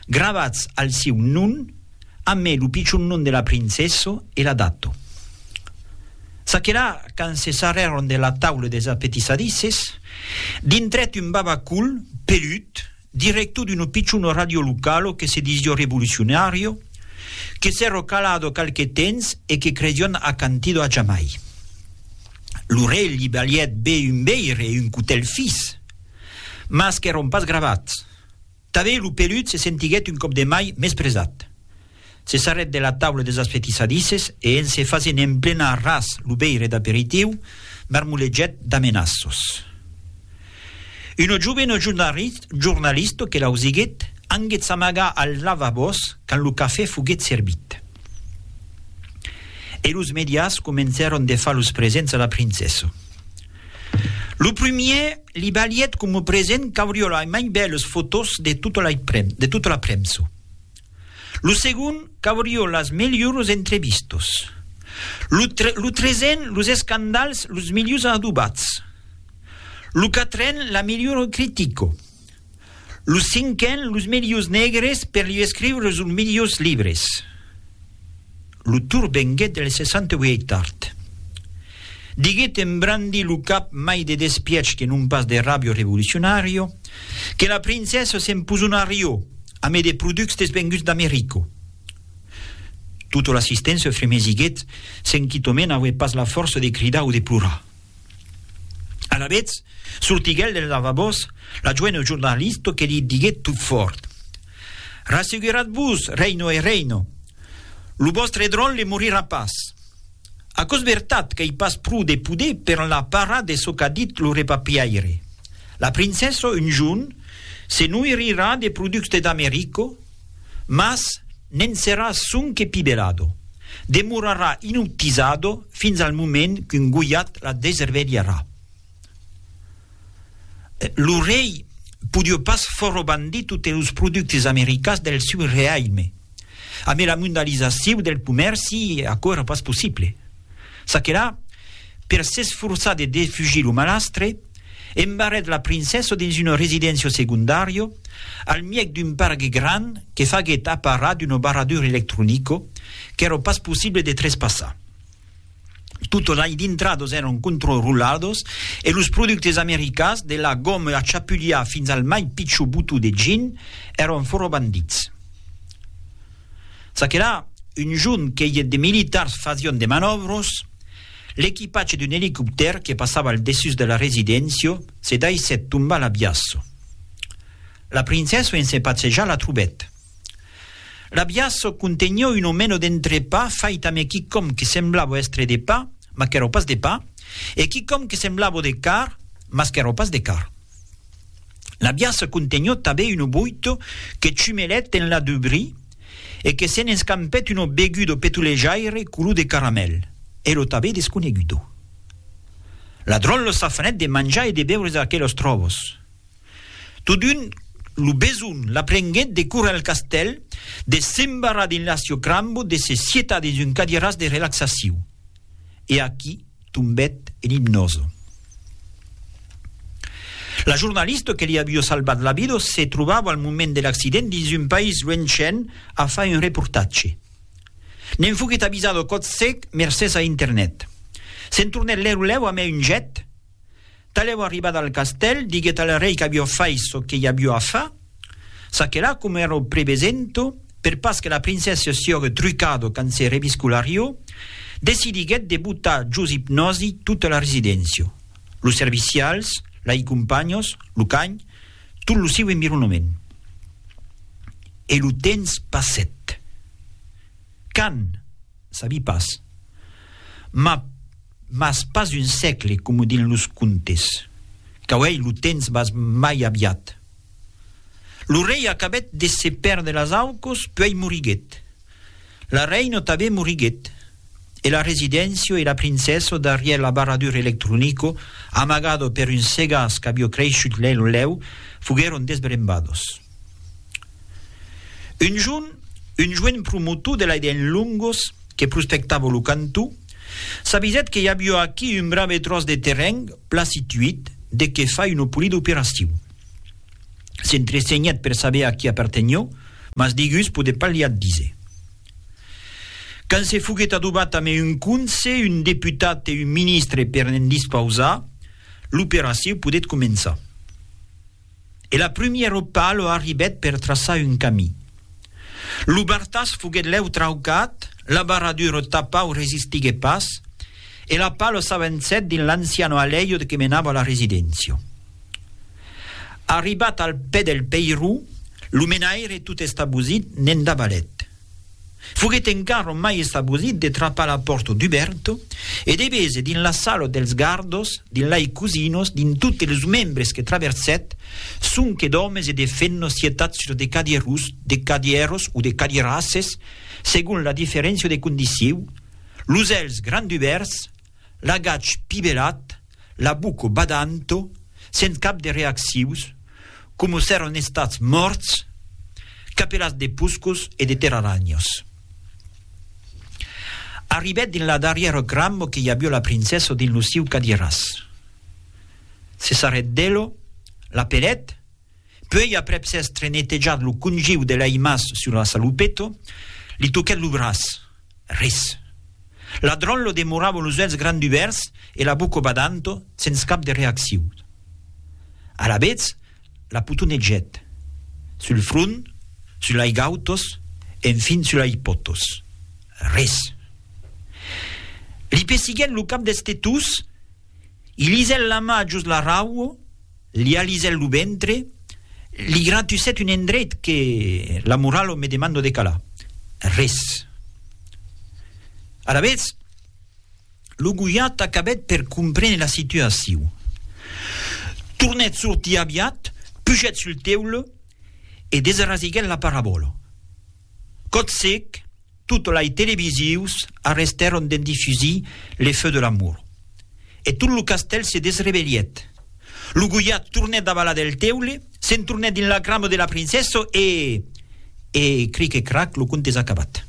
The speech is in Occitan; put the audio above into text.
Gravats al sieu non, amé lo pichon non de la princessa e la data. Çaquelà, quand se sarrèron de la taula des apetissadisses, dintrèt un babacol, pelut, director d'una pichona ràdio locala que se disiá revolucionària, que s'èra calada qualque temps e que credián acantida a jamai. Lo rei li balhèt be un veire e un cotèl fis, mas qu'èron pas gravats. Tanben lo pelut se sentiguèt un còp de mai mespresat. Se sarrèt de la taula deus asfetissadisses e, en se fasent emplenar ras lo veire d'aperitiu, marmolegèt d'amenaços. Una jovena jornalista que l'ausiguèt anguèt s'amagar als lavabòs quand lo cafè foguèt servit. E los medias comencèron de far los presents a la princessa. Lo primièr li valièt coma present qu'aurió lai mai bèlas fotós de tota la premsa. Lo segond qu'aurió las melhoras entrevistas. Lo tresen los escandals los milhors adobats. Lo quatren la melhora critica. Los cinquen los melhors negres per li escriure sos melhors libres. Lo tour venguèt del 68 tard. Diguèt en brandir lo cap mai de despiech que non pas de ràbio revolucionàrio que la princessa s'emposonarió amé de productes venguts d'Americo. Tota l'assistença fremesiguèt se'n quitò mena aué pas la fòrça de cridar o de plorar. Alavetz, sortiguèt del lavabòs la joena jornalista que li diguèt tot fòrt, Rasseguratz-vos, Reino e Reino, lo vòstre dròlle morirà pas. Aquò's vertat qu'ei pas pro de poder per enlà parar de çò qu'a dit lo repapiaire. La princessa, un jorn, se noirirà de productes d'America, mas ne'n serà sonque pibelado, demorarà inutizado fins al moment qu'un goiat la desrevelharà. Lo rei podió pas forrobandre totes los productes americans del seu reialme. Amé la mondalizaciu del comèrci, aquò èra pas possible. Çaquelà, per s'esforçar de defugir lo malastre, embarrèt la princessa dins una residéncia segondària al mièg d'un pargue grand que faguèt aparar d'una barradura electronica qu'èra pas possible de trespassar. Totas lai dintradas èran controroladas e los productes americans, de la goma a chapulhar fins al mai pichor botó de gin, èran fòra bandits. Ça que la, un junh que iet de militars fasión de manòvros, l'equipatge d'un elicoptèr que passava al dessús de la residéncia se daissèt tombar a l'abiasso. La princessa en se patsejar la trobèt. L'abiasso contenió un omeno d'entrepà fait ame quicòm que semblava èstre de pa, mas qu'èra pas de pa, e quicòm que semblava de car, mas qu'èra pas de car. La biaça contenhó tabé uno boito que chumelèt enlà deu bri e que se'n escampèt uno begudo petulejaire color de caramèl, e lo tabé desconegudo. La dròlla s'afanèt de manjar e de beure d'aquelos tròvos. Totun, lo beson la prenguèt de córrer al castèl, de s'embarrar dins l'aciocrambo, de se sietar dins un cadiràs de relaxaciu. E aquí, Tombèt en ipnòso. La jornalista que li aviá salvat la vida se trobava al moment de l'accident dins un país luenchen a far un reportatge. Ne'n foguèt avisada còth sec mercés a internet. Se'n tornèt lèu lèu a mai un jet. Talèu arribat al castèl, diguèt al rei qu'avió fait çò que i avió a far, ça que la, coma èra au prevesento, per pas que la princessa siògue trucado quand se reviscularió, decidiguèt de botar jos ipnòsi tota la residéncia, los servicials, lai companhos, lo canh, tot lo siu environament. E lo temps passèt. Quand. Sabi pas. Ma, mas pas un sègle, coma dins los contes. Qu'auei lo temps bas mai aviat. Lo rei acabèt de se pèrder las aucos, puèi moriguèt. La reina tanben moriguèt. E la residéncia e la princessa darrièr l'abarradur electronico, amagado per un segàs qu'avió creishut lèu lèu, foguèron desbrembados. Un jorn, un joen promotor de l'ADN Longos, que prospectava lo cantó, s'avisèt que i aviá aquí un brave tròç de terren plan situit de qué far una polida operacion. S'entresenhèt per saber a qui apartenió, mas digús podèt pas li ath díser. Quand se foguèt adobat amé un conse, un deputat e un ministre per ne'n dispausar, l'operacion podèt començar. e la prumièr opa lo arribèt per traçar un camí. Lo bartàs foguèt lèu traucat, la barra d'uro tapau resistiguèt pas, e la palo s'avançèt dins l'anciano alèiu que menava a la residéncia. Arribat al pè del peiró, lo menaire tot estabosit ne'n davalèt. Foguèt encara mai estabosit de trapar la pòrta dubèrta e de véser dins la sala dels gardos, dins lai cosinos, dins totes los membres que traversèt, sonque d'òmes e de femnas sietats sus de cadièros, de cadièros o de cadièrasses, segon la diferéncia de condiciu, los èlhs grandubèrts, l'agach pibelat, la buco badanto, sens cap de reaccius, coma s'èran estats mòrts, capelats de puscos e de terralanhos. Arribèt dins la darrièra cramo que i avió la princessa dins lo siu cadiràs. Se sarrèt d'elo, l'apelèt Puèi aprèp s'èstre netejat lo congiu de l'aimas sur la saloupeta, li toquèt lo braç. Res. L'adròl lo demorava los uèlhs grandubèrts e la boca badant, sens cap de reaccion. Alavetz, la potonegèt. Sul front, sul lai gautós, enfin sul lai potós. Res. Li pessiguèt lo cap destetós, i lisèt la mà jos la raua, Li alisèt lo ventre, li gratusèt un endreit que la moralo me demando de calar. Res. Alavetz, lo gojat acabèt per comprene la situacion. Tornèt sortir aviat, pujèt sul teule e desrasiguèt la parabòla. Cotsec, tot lai televisius arrestèron d'en difusir Les feux de l'amour. E tot lo castèl se desrebelièt. Lo Goiat tornèt davalar del teule, se'n tornèt dins la cramo de la princessa e. E, cric e crac, lo conte es acabat.